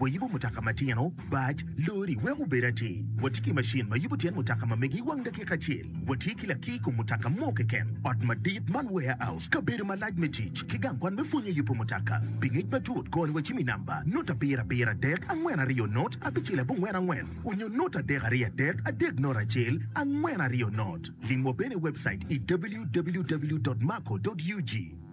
Wayubo mutoka matino, bac, lori wek obed atir. Watye ki macin ma yubo tyen mutoka ma mege i wang dakika acel. Watye ki lakir i kom mutoka mo keken, ot madit man warehouse, kabedo malac me tic, ki gang kwan me pwonyo yubo mutoka. Pi ngec matut, kony wacim i namba, Not Abiro Abiro Adek Angwen Aryo Not Abicel Abongwen Angwen onyo Not Adek Aryo Adek Adek Not Acel Angwen Aryo Not. Lim wa bene i webcait i www.marco.ug.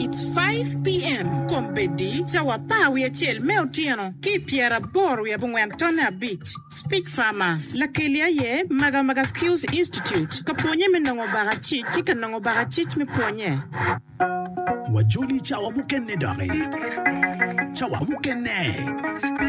It's five PM kombeddi cawa apar wiye acel me otyeno ki i pyera aboro wiye abongwen tonne abic. Speech Farmer, Lakeli aye Magamaga Skills Institute ka pwonye me nongo baka cic ki ka nongo baka cic me pwonye. Wajoli cawa mukene doki. Cawa mukene.